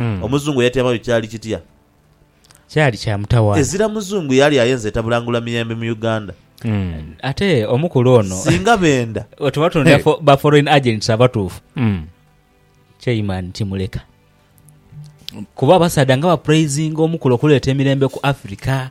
Omuzungu yatyama yo kyali kitya? Kyali kya mutawaana. Ezira Muzungu yali ayenze etabulangula miyembe mu Uganda. Ate omukulu ono. Singa benda. Wetuba tunonera ba foreign agents abatuufu, Chairman Kimuleka. Kuba abasaadha nga bapraisinga omukulu okuleeta emirembe ku Africa.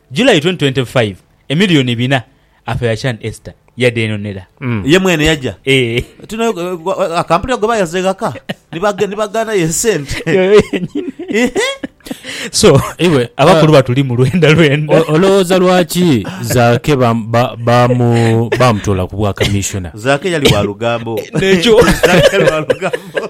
July twenty twenty five Emilioni bina afe ya can Esther yadenonera. Ye mwene yaja Eeh. Tino aka mpulira gwe bayaza eghaka ni bagaana yo esente. Yoyo yenyini. Ehe. So Iwe abakulu batuli mu lwenda lwenda. olowooza lwaki Zaake baamutola ku bwa Kamishona? Zaake yali wa lugambo. Nekyo. Zaake yali wa lugambo.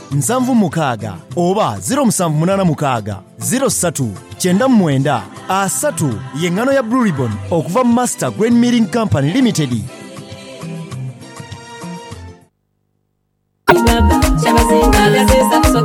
nsanvu mukaaga oba ziro musanvu munaana mukaaga ziro ssatu kyenda mu mwenda asatu y'engano ya Blue Ribbon okuva mu Master Grain Milling Company Limited.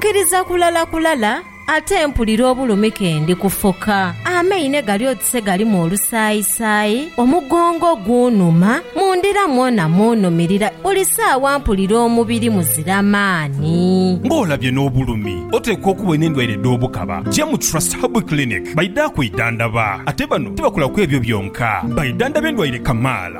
Kiriza kulala kulala. Ate mpulira obulumi ke ndi kufoka, amaine gali oti se galimu olusaayisaayi, omugongo gunhuma, mu ndira mwona munhumirira, buli saawa mpulira omubiri muzira maani. Ng'olabye n'obulumi, oteekwa okuba olina endwaire edh'obukaba. Ja mu Trust Herbal Clinic baidha kwidhandaba. Ate bano tibakola ku ebyo byonka, baidhandhaba endwaire kamaala.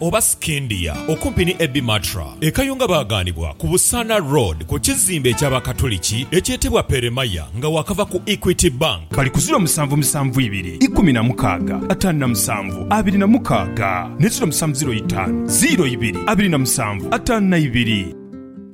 oba Scindia, okumpi ni Abbey Matra e Kayunga baagaanibwa ku Busaana Road ku kizimbe eky'Abakatuliki ekyetebwa Peremaya nga waakava ku Equity Bank. Bali ku ziro musanvu musanvu ibiri ikumi na mukaaga ataanu na musanvu abiri na mukaaga ne ziro musanvu ziro itaanu ziro ibiri abiri na musanvu ataanu na ibiri.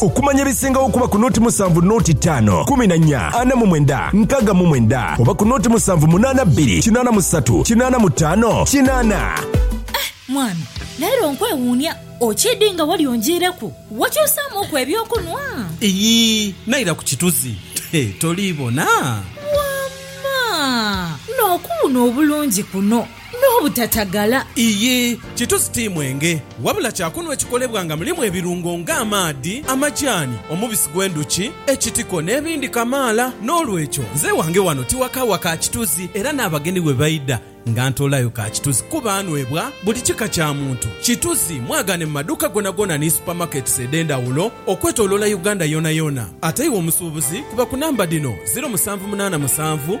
Okumanya ebisingagho kuba ku noti musanvu noti taano kumi na nya ana mu mwenda nkaga mu mwenda oba ku noti musanvu munana bbiri kinana mu satu kinana mu taano kinana. Eh mwami, leero nkwewuunia okyidi nga wali onjiireku? Wakyusaamu ku eby'okunwa? Iyii, naira ku kituzi. He, toliibona? Wamma! N'okuwuuna obulungi kuno! n'obutatagala. Ii, Kitusi ti mwenge, wabula kya kunhwa ekikolebwa nga mulimu ebirungo nga amaadhi, amajaani, omubisi gw'endhuki, ekitiko n'ebindi kamaala. N'olwekyo, nze ewange wano tiwakawa ka kitusi era n'abagenyi bwe baidha nga ntoolayo ka kitusi kuba anhwebwa buli kika kya muntu. Kitusi mwagaane mu maduuka gonagona ni supermarkets edh'endhawulo okwetoloola Uganda yonayona. Ate iwe omusuubuzi kuba ku namba dhino, ziro musanvu munaana musanvu,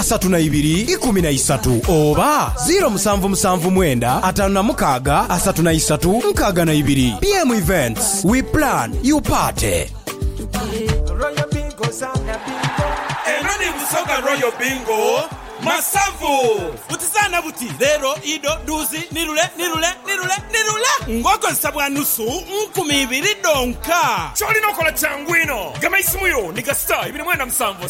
asatu na ibiri ikumi na isatu oba ziro musanvu musanvu mwenda atanu na mukaaga asatu na isatu nkaaga na ibiri. BM Events, we plan, you party. Eno ni Busoga Royal Bingo Masavu. Butizana buti lero ido duuzi ni lule ni lule ni lule ni lule ng'okozesa bwa nusu nkumi ibiri dhonka. Ky'olina okola kyangu inho. Gema eisimu yo ni kasita ibiri mwenda musanvu.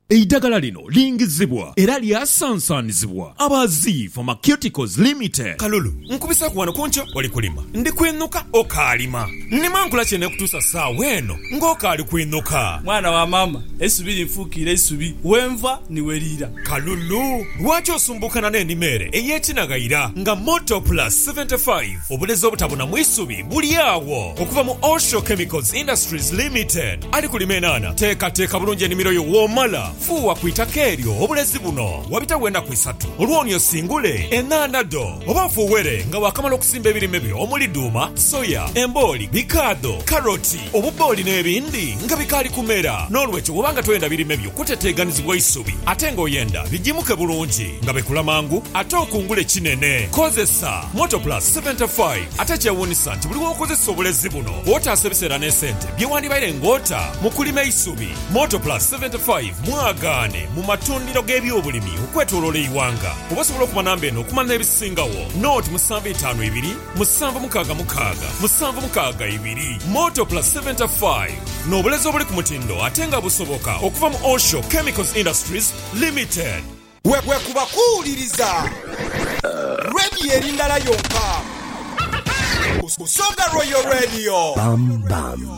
Eidagala lino lingizibwa era lyasansanizibwa aba Zii Pharmaceuticals Limited. Kalulu, nkubisaaku wano ku nkyo oli kulima. Ndi kwinuka okaalima. Nnima nkula ki eneekutuusa saawa eno ng'okaali kwinuka? Mwana wa maama, eisubi linfuukiire isubi, we nva ni we liira. Kalulu, lwaki osumbuukana n'enima ere ey'ekinaghaira nga Motor Plus 75? Obulezi obutabonamu isubi buli agho okuva mu Osho Chemicals Industries Limited. Ali kulima enhaanha, teekateeka bulungi enimiro yo. Womala, fuuwa ku itaka eryo obulezi buno. Wabitagho enaku isatu olwo oni osingule enhaanha dho. Oba ofuuwere nga waakamala okusimba ebirime byo omuli dhuuma, soya, embooli, bikaadho, karoti, obubbooli n'ebindi nga bikaali kumera. N'olwekyo bw'oba nga toyenda birime byo kuteteeganizibwa isubi ate ng'oyenda bijimuke bulungi nga bikula mangu ate okungule kinene, kozesa Motoplus 75. Ate ekyewuunisa nti buli w'okozesa obulezi buno, kwotaasa ebiseera n'esente. Bye wandibaire ng'ota mu kulima eisubi. Motor Plus 75 mwagaane mu matundhiro g'ebyobulimi okwetoloola eighanga. Oba osobola okuba namba eno okumala n'ebisingagho. Nooti musanvu itaanu ibiri, musanvu mukaaga mukaaga, musanvu mukaaga ibiri. Motor Plus 75, n'obulezi obuli ku mutindo ate nga busoboka okuva mu Osho Chemicals Industries Limited. Bwekuba kuwuliriza Radio eri ndala yonka, Busoga Royal Radio.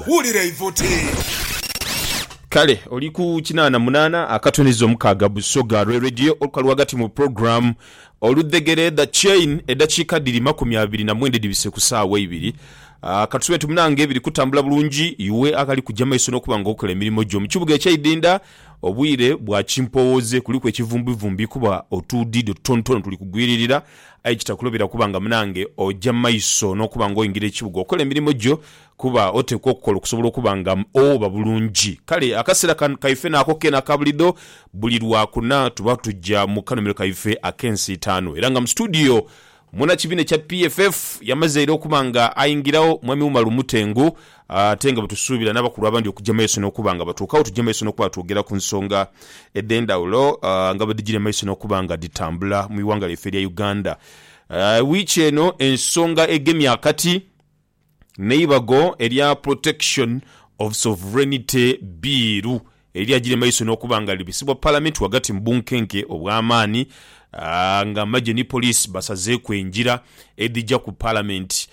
Wulira eivuti. Kale oli ku kinaana munaana akatuneza omukaaga Busoga Royal Radio olukalu ghagati mu program Oludhegere The Chain edakiika dhiri makumi abiri na mwenda edhibise ku saawa eibiri. Katube nti munange biri kutambula bulungi iwe aghali kuja maiso nokuba nga okola emirimo gyo mu kibuga ekyeidinda Obwire bwa kimpowoze kuliku ekivumbivumbi kuba otuudiido tutonotono tuli kugwiririra aye kitakulobera kuba nga munange oja maiso n'okuba nga oingira ekibuga okola emirimo gyo kuba oteekwa okukola okusobola okuba nga owoba bulungi. Kale akaseera kano kaife naako keene aka bulido buli Lwakuna tuba tuja mu kanuumiro kaife ak'ensiitaano era nga mu situdiyo Munakibina kya PFF yamazeire okuba nga aingiragho Mwami Umar Mutengu ate nga bwetusuubira n'abakulu abandi okuja maiso n'okuba nga batuukagho tuje maiso n'okuba nga twogera ku nsonga edhendhawulo nga bwedhijire maiso n'okuba nga dhitambula mu ighanga lyaife erya Uganda wiiki eno. Ensonga egemye akati. n'eibago erya Protection of Sovereignty Bbiiru erya giri maiso n'okuba nga libisibwa Palamenti ghagati mu bunkenke obw'amaani nga amagye ni poliisi basazeeku engira edhija ku Palamenti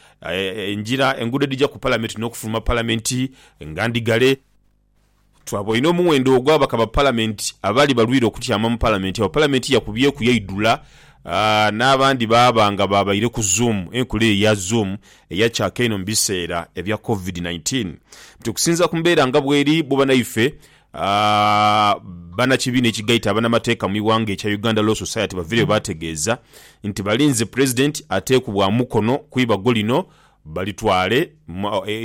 engira enguudo edhija ku Palamenti n'okufuluma Palamenti nga ndhigale. Twaboine omuwendo ogw'ababaka ba Palamenti abaali balwire okutyama mu Palamenti agho Palamenti yakubyeku yaidhula n'abandi baaba nga baabaire ku Zoom. Enkola eyo eya Zoom eyacaaka inho mu biseera ebya Covid nineteen. But okusinziira ku mbeera nga bweri, bwo banaife banakibiina ekigaita abanamateeka mu ighanga ekya Uganda Law Society bavireyo baategeeza nti balinze Pulezidenti ateekubwa mukono ku ibago lino balitwale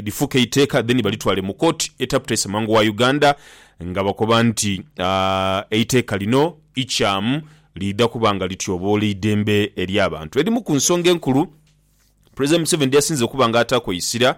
lifuuke eiteeka then balitwale mu kooti etaputa Ssemanga wa Uganda nga bakoba nti eiteeka lino ikyamu liidha kuba nga lityoboola eidembe ely'abantu. Edhimu ku nsonga enkulu Pulezidenti Museveni dh'asinze okuba nga ataaku eisira,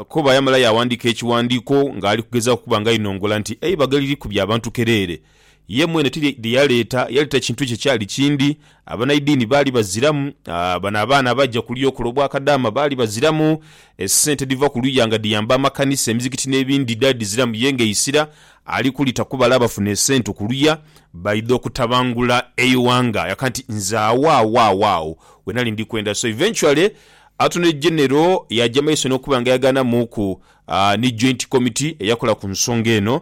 Koba yamala yaawandiika ekiwandiiko ng'ali kugezaaku okuba nga ainongola nti eibaga liri ku by'abantu kereere Ye mwene ti ye yaleeta, yaleeta kintu kye kyali kindi. Abanaidini baali baziramu. Bano abaana abaja kuliya okola obwakadaama baali baziramu. Esente edhiva kuluya nga dhiyamba amakanisa, emizikiti n'ebindi dhaali dhiziramu. Ye ng'eisira ali kulita ku bale abafuna esente kuluya baidha okutabangula eighanga. Yaka nti, Nze agho agho agho agho we nali ndi kwenda. So eventually Attorney General yaaja mu maiso n'okuba nga yagaanamuuku ni Joint Committee eyakola ku nsonga eno.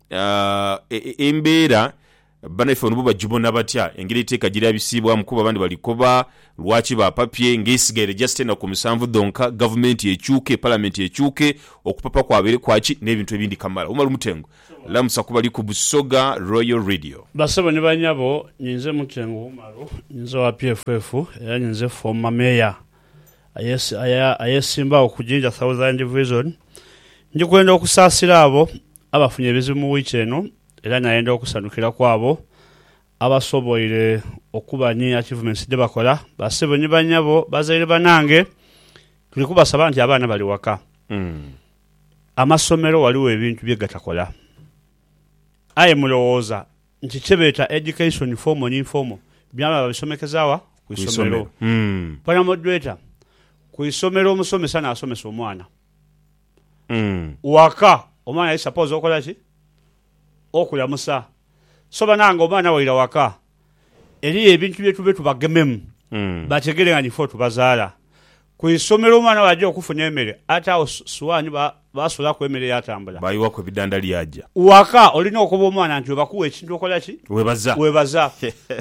Embeera banaife bano bo bagibona batya engeri eiteeka gye lyabisiibwamu kuba abandi bali koba lwaki baapapye ng'esigaire just enaku musanvu dhonka gavumenti ekyuke, palamenti ekyuke, okupapa kwabaire kwa ki n'ebintu ebindi kamala. Umar Mutengu, Lamusa ku bali ku Busoga Royal Radio. Bassebo ni banyabo, ninze Mutengu Umaru, ninze owa PFF era ninze former Mayor ayesimbagho ku Jinja Southern Division. Ndikwenda okusaasira abo Abafunye ebizibu mu wiiki eno era nayenda okusanhukira ku abo abasoboire okuba ni achievements dhebakola, Basebo ni banyabo, bazaire banange tuli kubasaba nti abaana bali waka, amasomero ghaligho ebintu bye gatakola aye mulowooza nti kyebeeta education formal ni informal byona babisomekeza wa? Ku isomero. Panamoderator, Ku isomero omusomesa nasomesa omwana. waka omwana yali suppose okola ki? Okulamusa. So banange omwana waira waka eriyo ebintu byetube tubagememu bategere nga nife otubazaala. Ku isomero omwana bwaja okufuna emere ate agho swaani basulaku emere yatambula. Bayiwaku ebidanda lyaja. Waka olina okoba omwana nti webakuwa ekintu okola ki? Webaza. Webaza.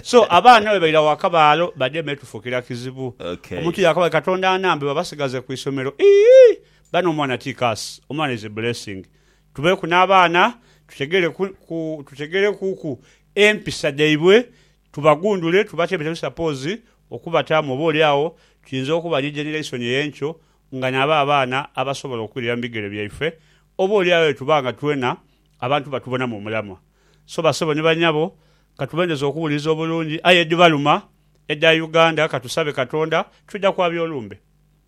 So abaana bwebaira waka baalo bademe tufukira kizibu. Omuntu yakaba ati Katonda anambe babasigaze ku isomero. Iihh! Bano omwana ti curse, omwana is a blessing. Tubeeku n'abaana tutegeleku ku tutegelekuku empisa dhaibwe, tubagundule tubatebeteku suppose okubataamu oba oli agho tuyinza okuba ni generation ey'enkyo nga nabo abaana abasobola okwirira mu bigere byaife oba oli agho bwetuba nga twena abantu batubonamu omulamwa. So bassebo ni banyabo katubendeze okuwuliriza obulungi aye edhibaluma edha Uganda katusabe Katonda twidha kwabya olumbe.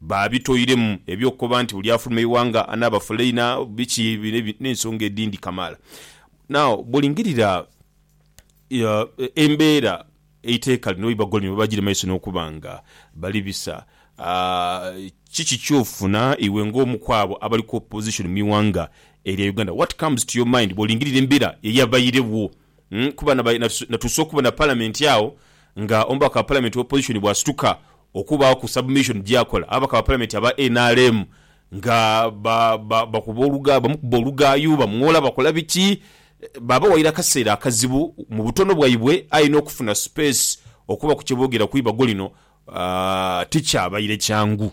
Baabitoiremu eby'okukoba nti buli afuluma eighanga anaaba fulaina, biki, n'ensonga edhindi kamaala. Now, bw'olingirira embeera eiteeka lino bweiba golimu, bweba giri mu maiso n'okuba nga bali bisa, kiki ky'ofuna iwe ng'omu kw'abo abali ku opposition mu ighanga erya Uganda? What comes to your mind bw'olingirira embeera eyabairegho? kuba natuusa okubona Palamenti agho nga omubaka wa Palamenti owa Opozishoni bw'asituka okubaaghoku submission gy'akola ababaka ba Palamenti aba nrm nga bakuba oluga, bamukuba olugaayu, bamwola, bakola biki. Baabawaire akaseera akazibu mu butono bwaibwe aye n'okufuna sipeesi okubaku kye boogera ku ibago lino tikyabaire kyangu.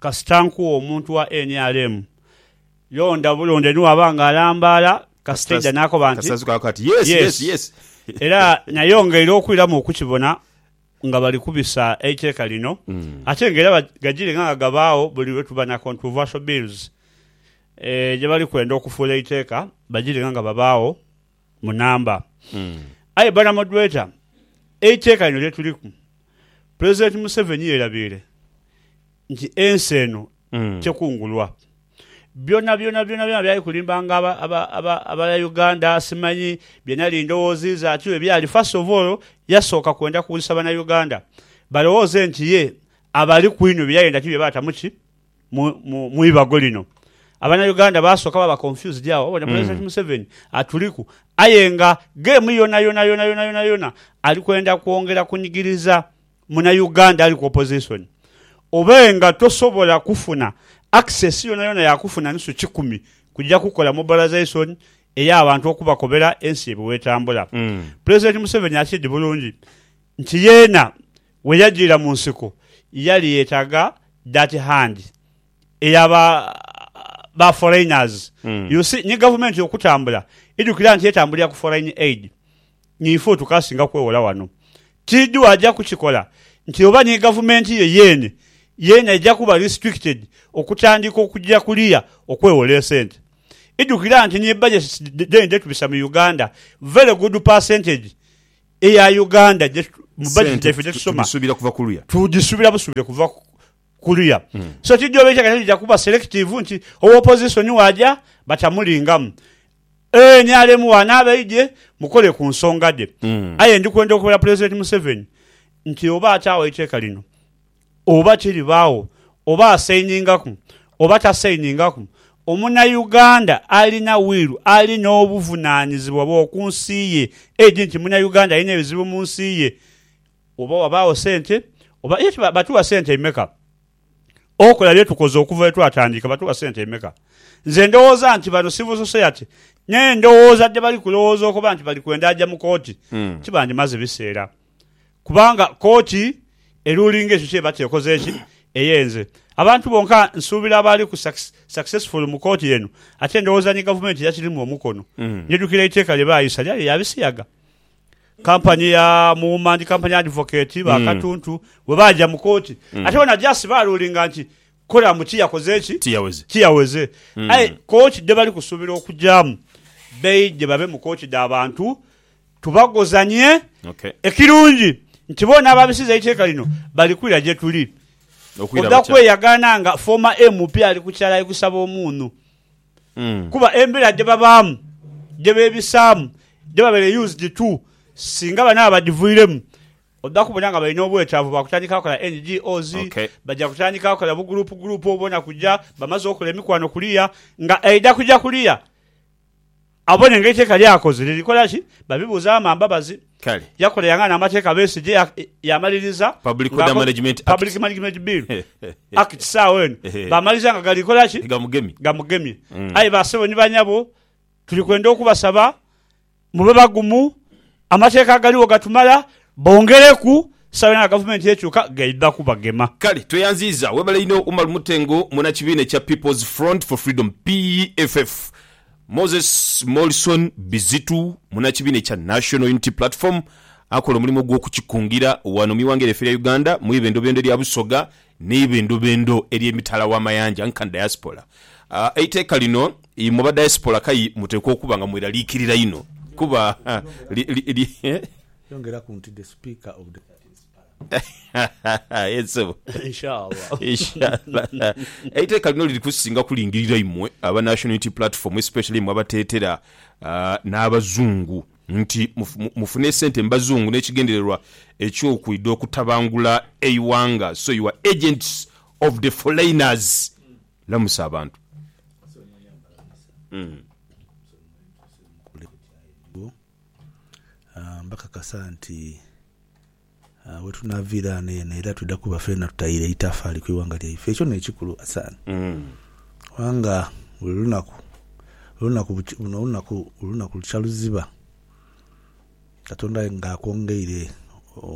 kasita nkuwa omuntu wa nrm, londa bulonde ni bw'aba nga alambaala, kasita aidha n'akoba nti, Kasita azukaaku ati, Yes, yes, yes. Era nayongeire okwiramu okukibona nga bali kubisa eiteeka lino ate nga era gajiire nga nga gabaagho buli lwe tuba na controversial bills gye bali kwenda okufuula eiteeka, bajiire nga nga babaagho. mu namba. Aye banamodweta, eiteeka lino lye tuliku, Pulezidenti Museveni yerabiire nti ensi eno tekungulwa. Byonabyona byonabyona byali kulimbanga aba aba aba abaya Uganda simanyi bye nali ndowoozi iza ki bwe byali. First of all, yasooka kwenda kuwulisa Banauganda balowooze nti ye abali ku inho bye yayenda ti bye baatamu ki mu ibago lino. Abana Uganda basoka baba confused agho babona President Museveni atuliku aye nga game yonayona yonayona yonayona ali kwenda kwongera kunigiriza muna Uganda ali ku opposition. Oba nga tosobola kufuna access yonayona ya kufuna nusu kikumi kuja kukola mobilization eya bantu okubakobera ensi ebwe etambula. President Museveni akiidi bulungi nti yena Bwe yajiira mu nsiko, yali yetaga that hand eya ba ba foreigners. You see, ni gavumenti okutambula, idhukira nti etambulira ku foreign aid. Ni ife otukasinga kwewola wano. Tidhu aja kukikola nti oba ni gavumenti ye yeene yeena eja kuba restricted okutandiika okuja kuliya okwewola esente. Idhukira nti ni budgets dheene dhetubisa mu Uganda, very good percentage eya Uganda je mu budget Sente yaife je tu- tusoma tugisuubira kuva kuluya. tugisuubira busuubire kuva ku- kuluya. So tijooba ekyeka kyo kija kuba selective nti owa opposition waaja batamulingamu. Nrm waanaaba eidhye mukole ku nsonga dhe. Aye ndi kwenda okubera Pulezidenti Museveni nti oba ataawo eiteeka lino Oba kiri baagho oba asainingaku oba tasainingaku, omunauganda alina wiru ali n'obuvunaanyizibwa bw'oku nsi ye. Edi nti munauganda alina ebizibu mu nsi ye oba wabaagho sente oba. Ye kiba batuwa sente imeka okola bye tukoze okuva lwe twatandika? Batuwa sente imeka? Nze ndowooza nti bano civil society n'endowooza dhe bali kulowooza okuba nti bali kwenda aja mu kooti, kibandimaze biseera. kubanga kooti eruling ekyo kyeba kyekoze eki eyenze abantu bonka nsuubira abaaliku successful mu kooti eno ate ndowooza ni gavumenti yakirimu omukono njidhukira eiteeka lye baayisa lyali lya bisiyaga kampani ya Muwuma and Company Advocate ba Katuntu bwe baaja mu kooti ate bona just baarulinga nti Koramu ki yakoze ki? Tiyaweze. Ki yaweze. Aye kooki dhe bali kusuubira okugyamu baidhe babe mu kooki dha bantu tubagozanie. Okay. Ekirungi nti boona ababisiza eiteeka lino bali kwira gye tuli. Okwira Oja batya? kweyagaana nga former MP ali ku kyalai kusaba omuunhu. Kuba embeera dhe babaamu, dhe beebisaamu, dhe babaire used to, singa bano abadhivuiremu Oja kubona nga balina obwetaavu bwa kutandika kola NGOs, baja kutandika kola buguruupu guruupu obwo bona kuja bamaze okola emikwano kuliya nga aidha kuja kuliya abone nga eiteeka ly'akoze liri kola ki. Babibuuza Wama Mbabazi yakola yang'aana amateeka Besigye yamaliriza Public Order Management Act, Public Management Bill, Acts agho eno baamaliriza nga gali kola ki? Gamugemye. Aye ba ssebo ni ba nyabo tuli kwenda okubasaba. Mube bagumu, amateeka agaligho gatumala, bongereku sawa yona nga gavumenti ekyuka gaidha kubagema. Kale tweyanziiza. Webale inho Umar Mutengo muna kibiina ekya People's Front for Freedom, PFF, Moses Morrison Bizitu muna kibiina ekya National Unity Platform akola omulimu ogw'okukikungira wano mu ighanga lyaife erya Uganda mu ibendobendo lya Busoga Ni bindhubindhu eri emitala w'amayanja nka diaspora. Eiteeka lino imwe ba diaspora kayi muteekwa okuba nga mweraliikirira inho kuba li. Yongeraku nti the Speaker of the. Aye ssebo. Inshallah. Eiteeka lino liri kusinga kulingirira imwe aba National Unity Platform especially imwe abateetera n'Abazungu. nti mufune sente mu bazungu n'ekigendererwa eky'okwidha okutabangula eighanga so you are agents of the foreigners lamusa abantu. Mbakakasa nti Aah wetunaviira ghano eno era twidha kuba feena tutaire itafaali ku ighanga lyaife. Ekyo n'ekikulu Hassan. Kubanga buli lunaku, olunaku bukya, luno olunaku, olunaku lukya luziba Katonda aye nga akwongeire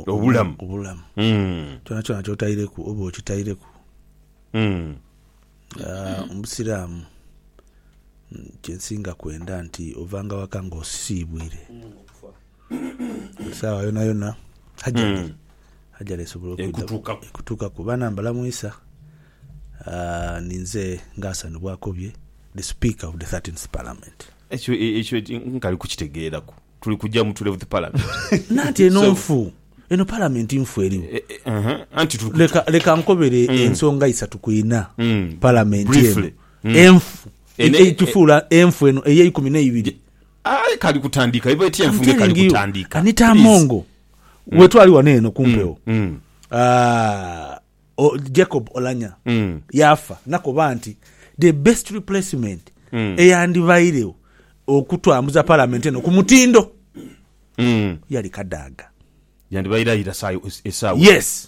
Obulamu. obulamu. Kyonakyona ky'otaireku oba okitaireku. Aah Omusiraamu kye nsinga kwenda nti ovanga waka ng'osiibwire. Esaawa yonayona ajali ajali esobola okutukaku bana mbalamwisa aah ninze nga Hassan bwakobye the speaker of the 13th parliament. Ekyo ekyo nkali kukitegeraku tuli kuja mu tuleventh parliament nanti eno nfu eno parliament nfu eriwo anti tuli leka leka nkobere ensonga isatu ku ina parliament eno enfu eitufuula enfu eno eyeikumi neibiri. Aye kali kutandika iva eti enfunge kali kutandika. Anita Amongo mm. wetwali wano eno kumpewo mm. mm. ah, o, Jacob Olanya mm. yafa nakoba nti the best replacement mm. eyandibairewo okutwambuza palamenti eno ku mutindo mm. yali Kadaga yandibaire ayira esaawa yes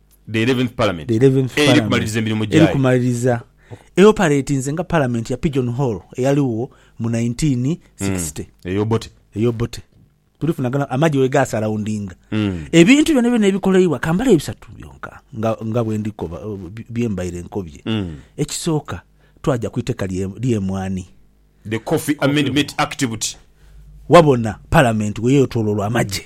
The Eleventh Parliament eri kumaliriza emirimu gyayo. Eoperatinze nga Palamenti ya Pigeon Hole eyaligho mu nineteen sixty. Ey'Obote. Tulifunagana amagye we gaasaraundinga. Ebintu byonabyona ebikoleibwa, ka mbale bisatu byonka nga bwe ndi koba, bye mbaire nkobye. Ekisooka, twaja ku iteeka ly'emwaani. The Coffee Amendment Act buti. Wabona Palamenti bwe yeetoloolwa amagye.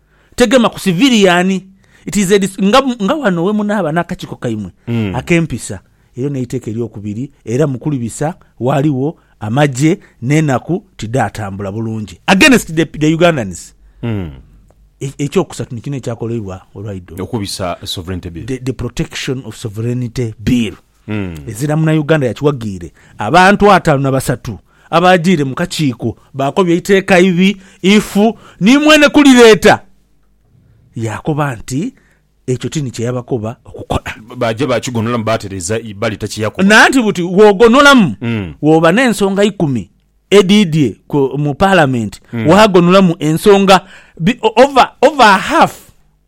tegema ku civilian it is a nga, nga wano wemunaaba n'akakiiko kaimwe mm. ak'empisa eryo n'eiteeka eryokubiri era mukulibisa waliwo amagye n'enaku tidhaatambula bulungi against the, the Ugandans mm. E, ekyokusatu nikino ekyakoleibwa olwaido okubisa sovereignty bill the, the protection of sovereignty bill mm. ezira munauganda yakiwagiire abantu ataano na basatu Abaajiire mu kakiiko baakobya eiteeka ibi ifu ni mwene kulireeta. Yaakoba nti, Ekyo ti ni kye yabakoba okukola. Baaja baakigonolamu baatereza Ibbali ta kye yakoba. Nanti buti bw'ogonolamu, bw'oba n'ensonga ikumi edhiidhie mu Paalamenti, waagonolamu ensonga over half.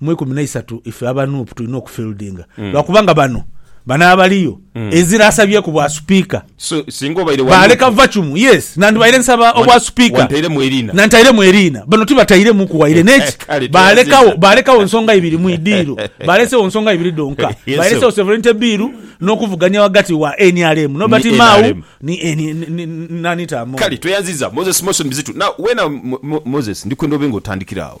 Mu ikumi na isatu ife aba Nup tulina okufieldinga mm. lwakubanga bano bano abaliyo mm. ezira asabyeku bwa supika so, baleka vacumu yes nandibaire nsaba obwa supika nantairemu eriina bano tibatairemu kuwaire neki balekawo balekawo nsonga ibiri mu idiiro balesewo nsonga ibiri donka balesewo severente biiru n'okuvuganya wagati wa nrm nobati mau nanitamu kale tweyanziza moses moson bizitu na wena moses ndikwenda obe nga otandikira awo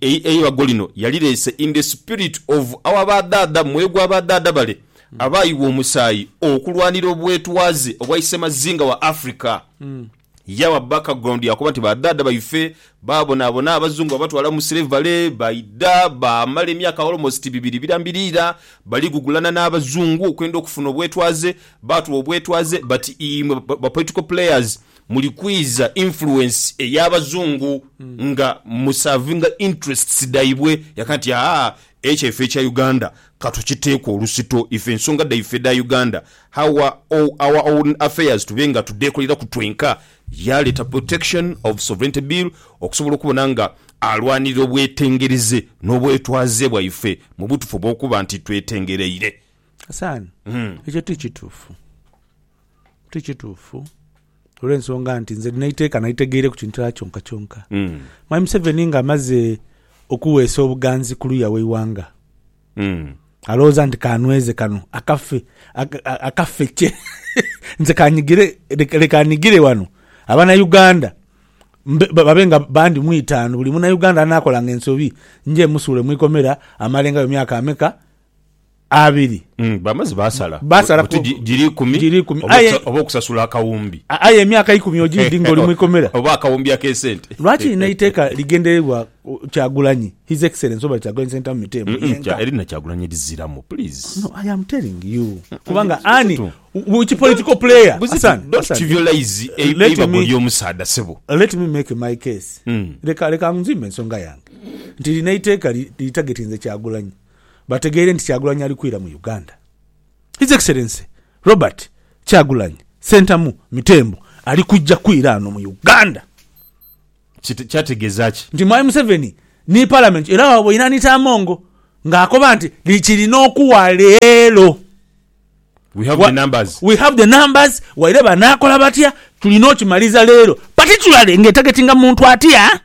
Eibago lino yalireese in the spirit of our badhaadha mwegwa badhaadha bale abaayigha omusaayi okulwanira obwetwaze obwa isemazinga wa Africa. Yawa background ya kuba nti badhaadha baife baabonaabona Abazungu babatwala mu slavery, baidha baamala emyaka almost bibiri birambiriira bali gugulana n'Abazungu okwenda okufuna obwetwaze. Baatuwa obwetwaze but imwe ba political players Muli kwiza influence eya bazungu nga mu servinga interests dhaibwe yaka nti haa ekyaife ekya Uganda katukiteeku olusito ife ensonga dhaife dha Uganda how our own affairs tube nga tudhekoleraku twenka. Yaleeta protection of sovereignty bill okusobola okubona nga alwanirira obwetengereze n'obwetwaze bwaife mubutufu obwokuba nti twetengereire. Asaana ekyo ti kituufu. Ti kituufu olw'ensonga nti nze nina eiteeka nalitegeire ku kintu kyonka kyonka. Mm. Mwami Museveni nga amaze okuweesa obuganzi ku luya w'eighanga Mm. alowooza nti kanweze kano akafe aka- a- akafe kye nze kanyigire leka leka nigire wano abanauganda mbe- ba- babe nga bandi mu itaanu buli munauganda anaakolanga ensobi nje musuule mu ikomera amalengayo myaka ameka abiri. Mm, bamaze basala. Basala Buti ku- gi- giri ikumi. giri ikumi. Oba Aye- okusa- Oba okusasula akawumbi. A- Aye emyaka ikumi ogidhi ng'oli mu ikomera. Oba akawumbi ak'esente. Lwaki lino eiteeka ligendererwa uh, Kyagulanyi, His Excellency Robert Kyagulanyi Ssentamu Miteembe Mm, mm, yenka? kya- Erina Kyagulanyi eriziramu, please. No, I am telling you. Kubanga ani, Buzitu. which political player? Buzitu, Hassan, don't Hassan, trivialize e- Let eibago me- ly'omusaadha sebo. let me make my case Mm. leka leka nzimbe ensonga yange nti lino eiteeka li- litagetinze kyagulanyi bategeire nti Kyagulanyi ali kwira mu Uganda. His Excellency Robert Kyagulanyi Ssentamu Mitembo ali kuja kwira ano mu Uganda. Kyategeza ki? Nti Mwami Museveni ni Palamenti era waboina ni Tamongo nga akoba nti likirina okuwa leero. We have the numbers. We have the numbers, waire banakola batya, tulina okimaliza leero. Particularly nga etargetinga muntu atya?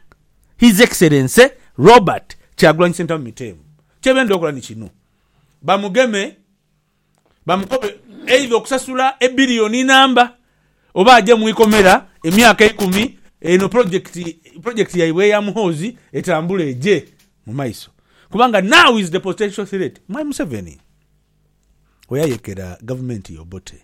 His Excellency Robert Kyagulanyi Sentamu Miteemu. Kyebenda okola ni kino, bamugeme, bamukobe either okusasula ebiliyoni namba oba aje mu ikomera emyaka eikumi eno pulojekiti pulojekiti yaibwe eya Muhoozi etambule eje mu maiso kubanga now is the potential threat my Museveni oyayekera gavumenti ye Obote.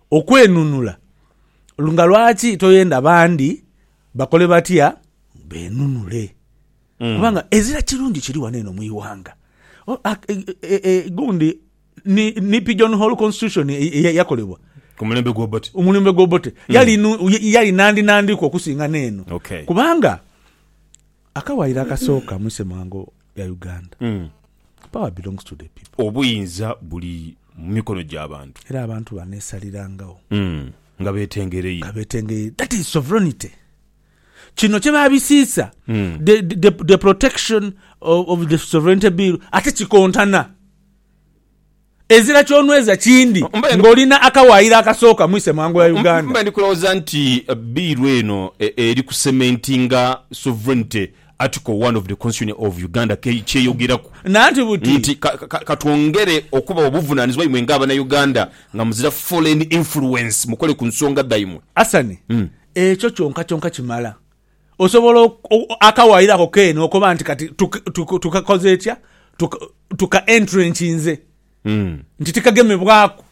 Okwenunula. Nga lwaki toyenda bandi bakole batya? Benunule. Kubanga ezira kirungi kiri wano eno mu ighanga. Gundi ni, ni Pigeon Hole Constitution eyakolebwa. Ku mulembe gwa Obote. Omulembe gwa Obote. Yali, yali nandinandiku okusinga n'eno. Kubanga. Akawaayiro akasooka mu isemwango lya Uganda, Power belongs to the people. Obuyinza buli mu mikono gya bantu. Era abantu baneesalirangawo. Nga beetengereire. Nga beetengereire. That is sovereignty. Kino kye baabisiisa, the, the, the protection of the sovereignty bill, ate kikontana. Ezira ky'onweza kindi ng'oli na akawaayiro akasooka mu isemwango ya Uganda. Mba ndi kulowooza nti biiru eno eri ku cementinga sovereignty, Article one of the Constitution of Uganda ky'eyogeraku Nanti buti. nti ka twongere okubawa obuvunaanizibwa imwe nga Abanauganda nga muzira foreign influence mukole ku nsonga dhaimwe. Asani, Ekyo kyonka kyonka kimala. Osobola akawaire ako keene okoba nti kati tukakoze etya? Tuka-entrencinze nti tikagemebwaku.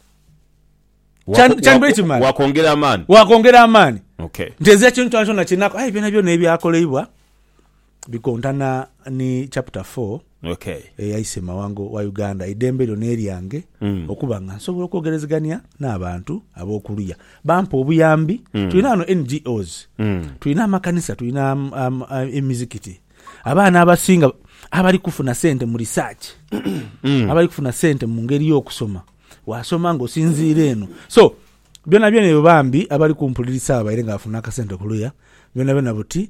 Kyandibaire kimala. Wakwongera amaani. Wakwongera amaani. Okay. Nti ezira kintu kyonakyona kyenakola. Aye byonabyona ebyakoleibwa bikontana ni chapter 4. Okay. eyaise mawanga wa Uganda, eidembe lyo n'eryange okuba nga nsobola okwogerezegania n'abantu ab'okuluya bampa obuyambi. Tulina ghano NGOs, tulina amakanisa, tulina emizikiti. Abaana abasinga abali kufuna sente mu research, abali kufuna sente mu ngeri y'okusoma, waasoma ng'osinziire eno. So, byonabyona ebyo bambi abali kumpulirisaagho baire nga bafuna akasente kuluya byonabyona buti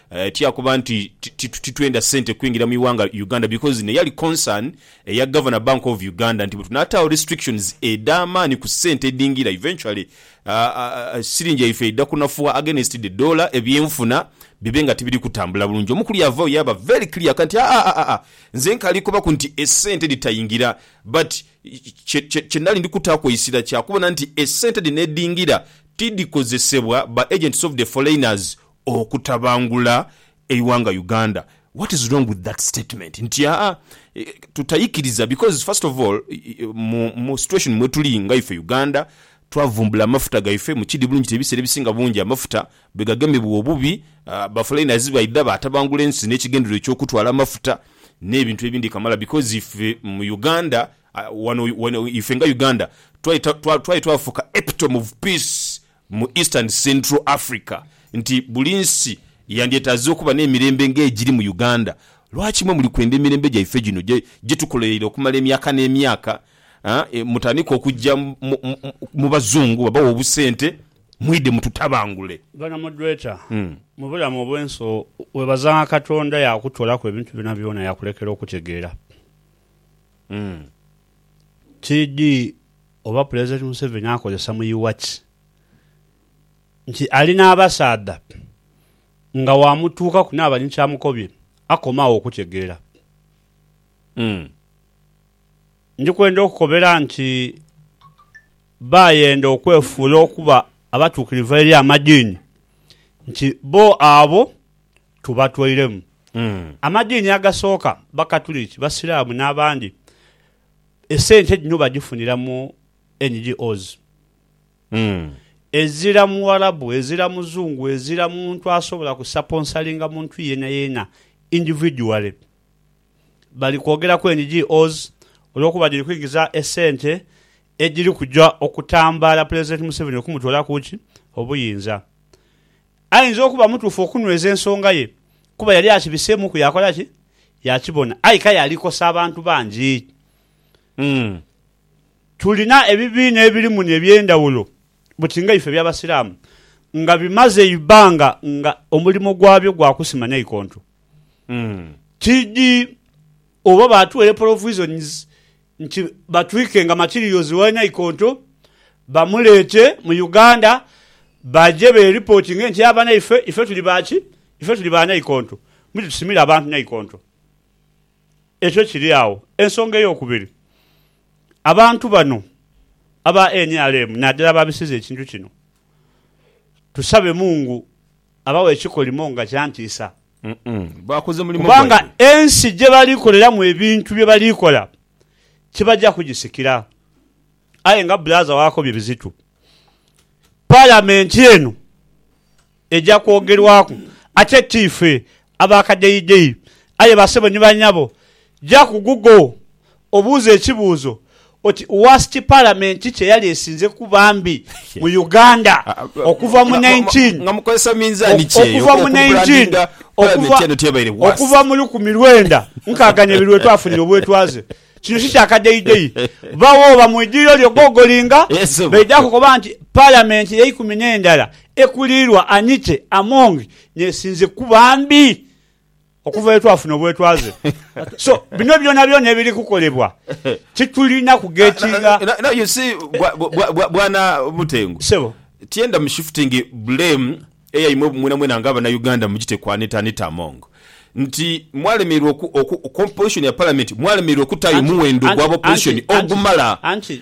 Tiyakoba nti titwenda sente kwingira mu iwanga Uganda because ne yali concern eya Governor Bank of Uganda nti bwetunataagho restrictions edhamaani ku sente edhingira eventually siringi yaife eidha kunafuwa against the dollar ebyenfuna bibe nga tibiri kutambula bulungi. Omukulu yavagho yaba very clear ka nti haa nze nkaali kubaku nti esente dhitaingira but kyenali ndi kutaaku eisira kya kubona nti esente dhino edhingira tidhikozesebwa ba agents of the foreigners okutabangula eighanga Uganda what is wrong with that statement nti haa tutaikiriza because first of all mu situation mwetuli nga ife Uganda twavumbula amafuta gaife mukidi bulungi nti ebiseera ebisinga bungi amafuta bwegagemebwa obubi ba foreigners baidha batabangula ensi nekigendererwa ekyokutwala amafuta nebintu ebindi kamala because ife mu Uganda wano ife nga Uganda twaye twafuuka epitome of peace mu East and Central Africa nti buli nsi yandyetaaze okuba n'emirembe ng'egiri mu Uganda. Lwaki mwe muli kwenda emirembe gyaife gino gye tukolereire okumala emyaka n'emyaka? Mutandike okujja mu Bazungu babawe obusente mwidhe mututabangule. Ghano mu Dweeta, mu bulamu obw'ensi, webaza nga Katonda yaakutoolaku ebintu byonabyona yaakulekera okutegeera. Tidhi oba Pulezidenti Museveni akozesa mu Iwaki nti ali n'abasaadha nga waamutuukaku naaba ni kyamukobye akoma agho okutegeera. Ndi kwenda okukobera nti baayenda okwefuula okuba abatuukirivu eri amadiini nti bo abo tubatwairemu. Amadiini agasooka Bakatuliki, Basiraamu n'abandi. Esente dhino badhifunira mu NGOs ezira Muwarabu, ezira Muzungu, ezira muntu asobola kusaponsalinga muntu yeenayeena individually. Bali kwogeraku NGOs olwokuba dhiri kwingiza esente edhiri kuja okutambaala Pulezidenti Museveni okumutoolaku ki? Obuyinza. Ainza okuba mutuufu okunweza ensonga ye, kuba yali akibiseemuuku yaakola ki? Yaakibona. Aye k'aye ali kosa abantu bangi. Tulina ebibiina ebiri muno eby'endhawulo buti nga ife eby'Abasiraamu nga bimaze eibbanga nga omulimo gwabyo gwa kusima naikonto. Tidhi oba baatuweire provisions nti batwike nga Makiriyozi wa Naikonto bamuleete mu Uganda baje beripotinge nti aba naife, ife tuli ba ki? Ife tuli ba Naikonto. Mwidhe tusimire abantu Naikonto. Ekyo kiri agho. Ensonga ey'okubiri, abantu bano aba nrm nadala ababisiza ekintu kino, tusabe Mungu abawe ekikolimo nga kyantiisa. kubanga ensi gye bali koleramu ebintu bye bali kola tibaja kugisikira. Aye nga bulaza wakobye Bizito, Palamenti eno eja kwogerwaku ate ti ife abakadeideyi aye basebo ni banyabo Ja ku Google obuuze ekibuuzo oti Worst Parliament ki kye yali esinze kuba mbi mu Uganda okuva mu 19 okuva mu 19 okuva okuva mu lukumi lwenda nkaaga n'ebiri lwe twafunira obwetwaze. Kino si kya kadeideyi. Bba wo oba mu idhiriro lyo gogolinga baidha kukoba nti Parliament y'eikumi n'endala ekuliirwa Anite Among n'esinze kuba mbi. Okuva lwe twafuna obwetwaze. So, bino byonabyona ebiri kukolebwa titulina kughekinga. Now, now you see, bwa- bwa- bwa- bwa- bwana Mutengu, Sebo. tyenda mu shifting blame eyaimwe mwenamwena nga abanauganda mugite ku Anita Anita Among nti mwalemererwa oku, oku, composition ya parliament mwalemererwa okutaayo Anti- muwendo anti- gwa opposition anti- anti- ogumala anti-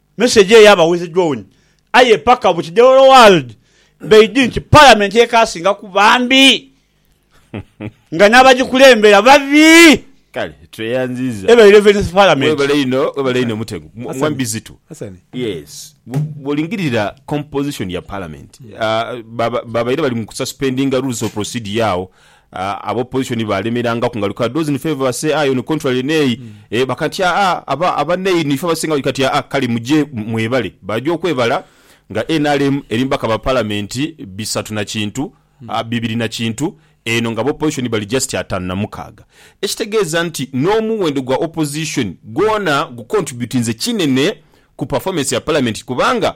Message eyo yaba with drawn aye paka mu kidewolo world baidhi nti parliament yekasinga kuba mbi nga nabajikulembera babi. Kale tweyanziza Eba eleventh parliament. Webale inho webale inho Mutego Mwami Bizitu yes bwolingirira composition ya parliament babaire bali mu ku suspendinga rules of procedure agho Aba opposition baalemeranga kungaluka those in favour ba say aye on contrary nay e ba kati aa aba aba nay nife abasinga bali kati aa kale muje mwebale baja okwebala nga nrm eri mubaka ba parliament bisatu na kintu a bibiri na kintu eno nga aba opposition bali just atano na mukaaga ekitegeeza nti n'omuwendo gwa opposition gwona gu contributinze kinene ku performance ya parliament kubanga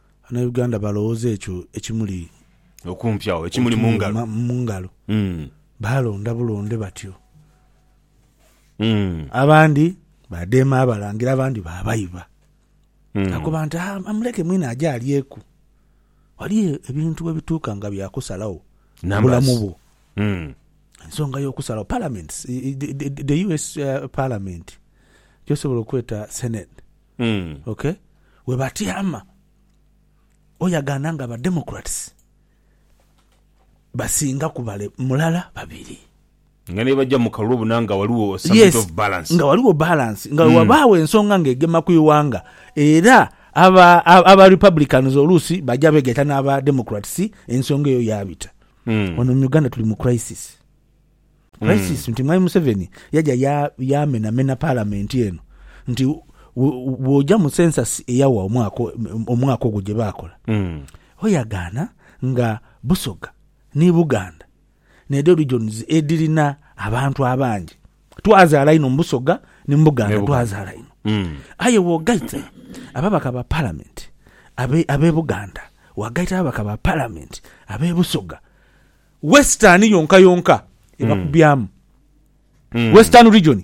Abanauganda balowooza ekyo ekimuli Okumpi agho, ekimuli mu okumuli ngalo. ma- mu ngalo. Mm. Baalonda bulonde batyo. Mm. Abandi baadeema Abalangira, abandi baabaiba. Mm. Nakoba nti, "Ah, amuleke mwine aje alyeku. Wali e- ebintu bwe bituuka nga bya kusalagho ku Numbers. bulamu bwo. Mm. Ensonga y'okusalagho, parliaments, i- i- the- the- the US uh, parliament, gyosobola okweta senate, ok webatyama oyagana nga ba democrats basinga ku bale mulala babiri. Nga nebajja mu kalulu bona nga waliwo some bit of balance. Nga waliwo balance nga wewabaawo ensonga nga egema ku iwanga era aba aba republicans oluusi baja begaita naba democrats ensonga eyo yabita. Wano mu Uganda tuli mu crisis. Crisis nti Mwami Museveni yaja yaamenamena Palamenti eno nti bw'oja mu census eyawa omwaka ogwo gye baakola, ho yagaana nga Busoga ni Buganda n'edho regions edhirina abantu abangi. Twazaala inho mu Busoga ni mu Buganda, twazaala inho. Aye bw'ogaita ababaka ba Palamenti ab'e Buganda, waagaita ababaka ba Palamenti ab'e Busoga, Western yonka yonka ebakubyamu Western region,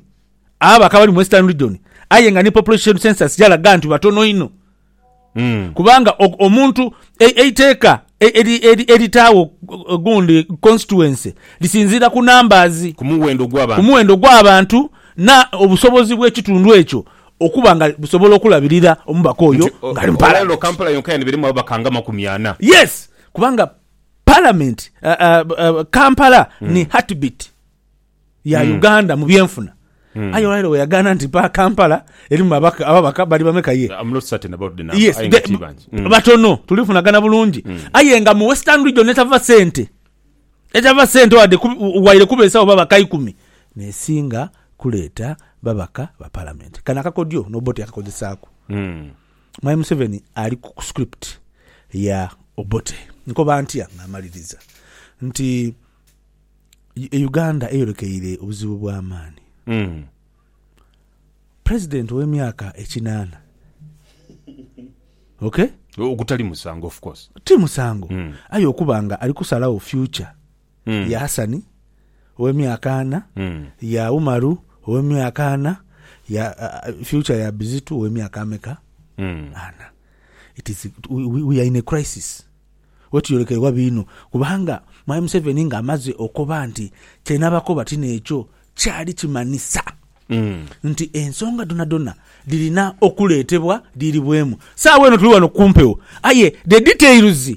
abo bakaba bali mu Western region aye nga ni population census yalaga nti batono inho kubanga o- omuntu e- eiteeka e- eri- eri- eritaawo gu- gundi constituency lisinziira ku numbers Ku muwendo ku gw'abantu. muwendo gw'abantu na obusobozi bw'ekitundu ekyo okuba nga busobola okulabirira omubaka oyo Nti, o- ng'ali mu olwaliro parliament. Kampala yonka yanibirimu ababaka nga amakumi ana. Yes, kubanga Palamenti, Kampala hmm. ni heartbeat ya hmm. Uganda mu byenfuna Mm. aye olwaire weyagana nti pa kampala erimu ababaka bali bameka ye hmm. batono tulifunagana bulungi mm. aye nga mu western region etava sente etava sente wade waire kubesawo babaka ikumi nesinga kuleeta babaka ba palamenti kano akakodyo noba oti akakozesaako mm. Mwami Museveni ali ku script ya Obote. Nkoba ntya nga mmaliriza nti Uganda eyolekeire obuzibu bwa maani. President ow'emyaka ekinaana, okay? Ogutali musango of course. Ti musango, aye okuba nga ali kusalagho future. Mm. ya Hasani ow'emyaka ana, Mm. ya Umaru ow'emyaka ana, ya uh, future ya Bizitu ow'emyaka ameka? Mm. ana it is we, we- we are in a crisis wetuyolekerwa biino kubanga mwami museveni nga amaze okoba nti kyenabakoba tino ekyo kyali kimanisa Mm. nti ensonga donadona dhirina okuleetebwa dhiiribwemu saawa eno tuli wano kumpewo aye the details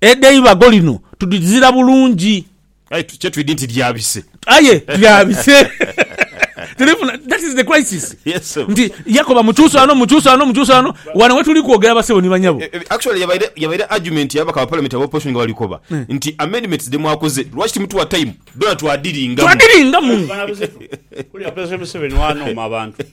Edh'eibago lino tudhizira bulungi. Aye kye twidhi nti lyabise. Aye lyabise. Tulifuna, that is the crisis. Yes. Nti yakoba mukyusa wano, mukyusa wano, mukyusa wano. Wano we tuli kwogera basebo ni banyabo. Eh, eh, actually yabaire yabaire argument ya bakaba parliament aba opposition nga bali koba hmm. nti amendments de mwakoze lwaki timutuwa time dona twadiringa twadiringa mu kuli apese museveni wano ma bantu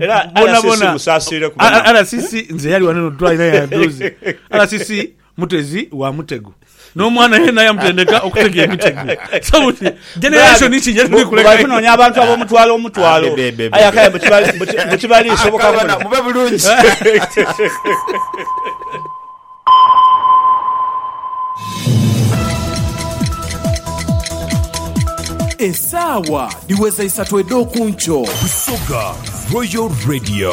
Era RCC musaasiire kuba na- RCC nze yali wano notwali naye aduuzi RCC mutezi wa mutego n'omwana yena yamutendeka okutega emitego so buti generation ki gyetuli Bali kuleka kunoonya abantu ab'omutwalo omutwalo. Ah, be, be, be, be. Aye akaye mbu kibali- mbu ki- mbu kibali soboka Abaana, muno. mube bulungi. Esaawa dhiweza isatu edh'oku nkyo. Busoga Royal Radio.